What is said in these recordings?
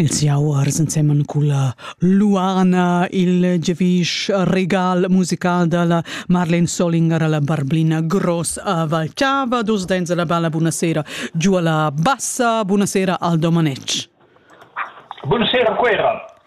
Els jau arsenseman culla Luana il giavisch regal musical dalla Marlene Solinger alla Barblina Gross a Valchava, dus dens alla balla buonasera giù alla bassa, buonasera Aldo Manec. Buonasera Quera.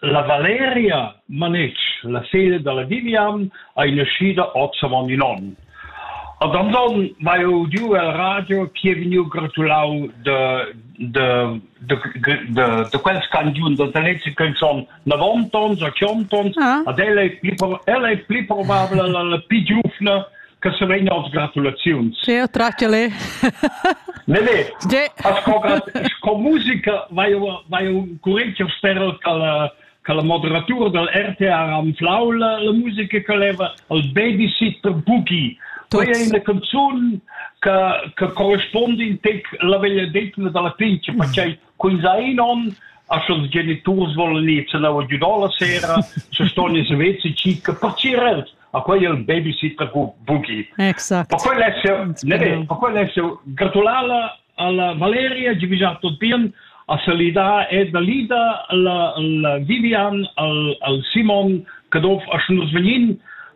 La Valeria Manetsch, la figlia da la Vivian, ei naschida oz avon in onn. Ad Anton vai udiu el radio che è vegniu gratulau de, de, de, de, de quels canzun da talezi che son 90 tons a 100 tons, ah. ad ella è pli, ella è pli probabile la, la più giuvna che sarein oz gratulaziuns. Teo, tracciale. Ne, ne. Asco sco musica vai vai un curriculum steril cal cal moderatur dal RTR am flau la, la musica che leva al babysitter Boogie. Quella è una canzone che, che corrisponde in tec la vegliadetna dalla pince, perché Quei sai non, a sch'ils geniturs volan ir cella giudò la sera, se ston ins vezi circa pacirer a quei il babysitter bugi. Exact. Per quel esse, ne be, per quel esse gratulala alla Valeria di vigiar tot bien a salidar ed a lida la, la Vivian al, al Simon, che dof a schnur sveglin,